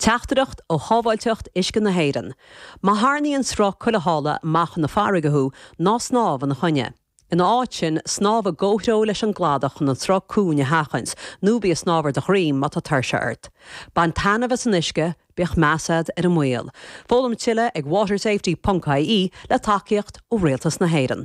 Teachtaireacht ó Shábháilteacht Uisce na hÉireann, Má tharrnaíonn sruth cuilitheála amach na farraige thú, ná snámh ina choinne. Ina áit sin, snámh i gcomhthreo leis an gcladach chun an sruth cúng a sheachaint, nó bí ag snámh ar do dhroim má tá tuirse ort. Bain taitneamh as an uisce, bíodh meas agat ar an mbaol. Foghlaim tuilleadh ag watersafety.ie le tacaíocht ó Rialtas na hÉireann.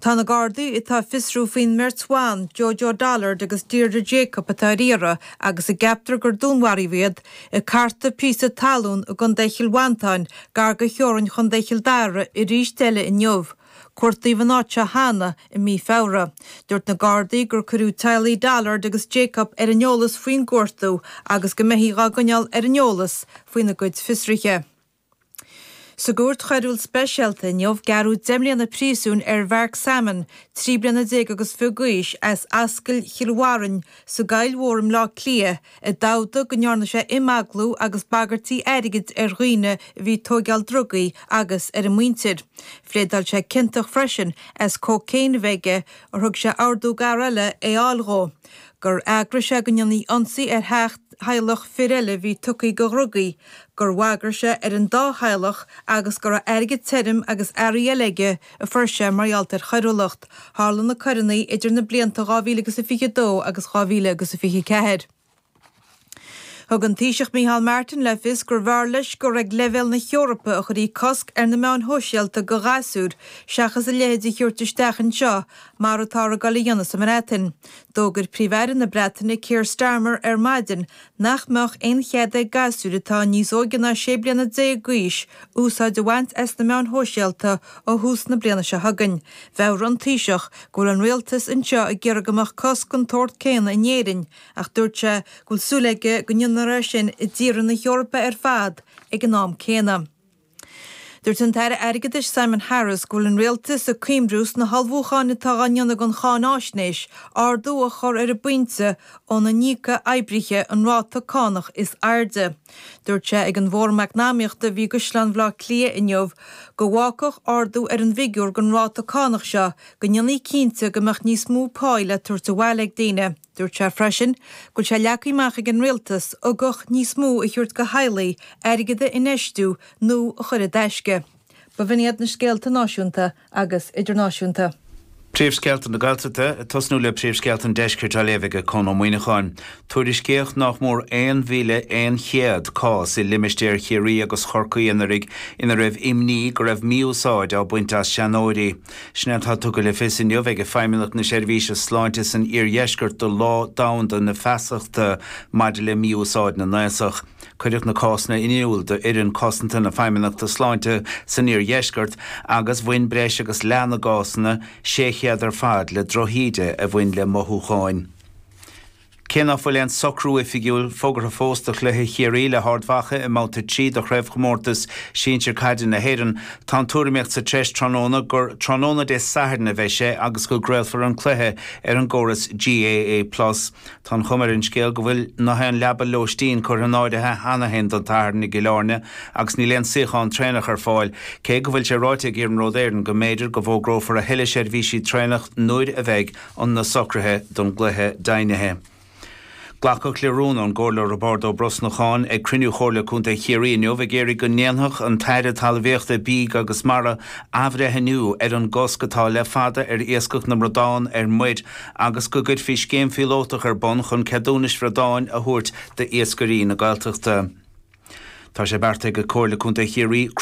Tá na Gardaí atá ag fiosrú faoin mbeirt bhan, Jojo Dullard agus Deirdre Jacob atá ar iarraidh agus a gceaptar gur dúnmharaíodh iad, ag cartadh píosa talún i gContae Chill Mhantáin, gar do theorainn Chontae Chill Dara arís eile inniu. Cuartaíodh an áit seo cheana i mí Feabhra. Dúirt na Gardaí gur cuireadh teaghlaigh Dullard agus Jacob ar an eolas faoin gcuartú agus go mbeifí á gcoinneáil ar an eolas faoina gcuid fiosruithe. Sa gCúirt Choiriúil Speisialta inniu, gearradh deich mbliana príosúin ar Mhark Salmon, trí bliana déag agus fiche d'aois, as Ascaill Chill Bharrainn sa gCoill Mhór i mBleá Cliath, a d'admhaigh go ndearna sé imeaglú agus bagairtí airgid ar dhaoine a bhí ag tóigeáil drugaí agus ar a muintir. Phléadáil sé ciontach freisin as cocaine a bheith aige, ar thug sé ordú d'fhear eile é a fháil dhó. gur eagraigh sé go ndéanfaí ionsaí ar theach theaghlach fir eile a bhí tugtha do dhrugaí, gur bhagair sé ar an dá theaghlach agus go raibh airgead tirim agus earraí eile aige a fuair sé mar gheall ar choiriúlacht. Tharla na coireanna idir na blianta 2000 agus a 22 agus 2000 agus a 24. Thug an Taoiseach Micheál Martin le fios gurbh fhearr leis gur ag leibhéal na hEorpa a chuirfí cosc ar na meáin shóisialta do ghasúir seachas a leithéid a thabhairt isteach anseo mar atáthar ag dul a dhéanamh sa mBreatain. D'fhógair Príomh-Aire na Breataine Keir Starmer ar maidin nach mbeadh aon chead ag gasúir atá níos óige ná 16 bliana d'aois úsáid a bhaint as na meáin shóisialta ó thús na bliana seo chugainn. Mheabhraigh an Taoiseach go bhfuil an Rialtas anseo ag iarraidh go mbeadh cosc den tsórt céanna in Éirinn Ach dúirt sé go bhfuil súil aige go ndéanfar é sin i dtíortha na hEorpa ar fad ag an am céanna. Dúirt an tAire Airgeadais Simon Harris go bhfuil an Rialtas ag cuimhniú sna hullmhúcháin atá á ndéanamh don cháinfhaisnéis ardú a chur ar an bpointe óna n-íocfadh oibrithe an ráta cánach is airde. Dúirt sé ag an bhFóram Eacnamaíochta a bhí i gCaisleán Bhaile Átha Cliath inniu go bhfágfadh ardú ar an bhfigiúr don ráta cánach seo go ndéanfaí cinnte go mbeadh níos mó páí le tabhairt abhaile ag daoine. Dúirt sé freisin go bhfuil sé leagtha amach ag an Rialtas ugach níos mó a thabhairt do theaghlaigh, airgead a infheistiú nó a chur i dtaisce. B'in iad na scéalta náisiúnta agus idirnáisiúnta. Príomhscéalta na Gaeltachta, ag tosnú le Príomhscéalta an Deiscirt á léamh aige Conn Ó Muíneacháin. Tuairiscíodh nách mór 1,100 cás i limistéir Chiarraí agus Chorcaí anuraidh ina raibh imní go raibh mí-úsáid á baint as seanóirí. Sin é atá tugtha le fios inniu ag Feidhmeannacht na Seirbhíse Sláinte san Iardheisceart do Lá Domhanda na Feasachta maidir le Mí-Úsáid na nAosach. Cuireadh na cásanna in iúl d'Fhoireann Cosanta na Feidhmeannachta Sláinte san Iardheisceart agus bhain breis agus leath na gcásanna, 600 ar fad, le drochíde a bhain le mothúcháin. Cé ná fuil aon socrú oifigiúil fógartha fós do chluiche Chiarraí le hArd Mhacha i mBabhta 3 de Chraobhchomórtas Sinsear Caide na hÉireann, tá an tuairimíocht sa treis tráthnóna gur tráthnóna Dé Sathairn a bheidh sé agus go gcraolfar an cluiche ar an gcóras GAA Plus. Tá an chuma ar an scéal go bhfuil nath aon leaba lóistín curtha in áirithe cheana féin don Satharn i gCill Airne agus níl aon suíochán traenach ar fáil, cé go bhfuil sé ráite ag Iarnród Éireann go mb'fhéidir go bhfógrófar a thuilleadh seirbhísí traenach nuair a bheidh na socruithe don gcluiche deimhnithe. Glacadh le rún ón gComhairleoir Roibeárd Ó Brosnacháin ag cruinniú Chomhairle Contae Chiarraí inniu ag iarraidh go ndéanfadh an tAire Talmhaíochta, Bídh agus Mara athbhreithniú ar an gcosc atá le fada ar iascach na mbradán ar muir agus go gcuirfí scéim phíolótach ar bun chun ceadúnais bhradáin a thabhairt d'iascairí na Gaeltachta. Tá sé beartaithe ag Comhairle Contae Chiarraí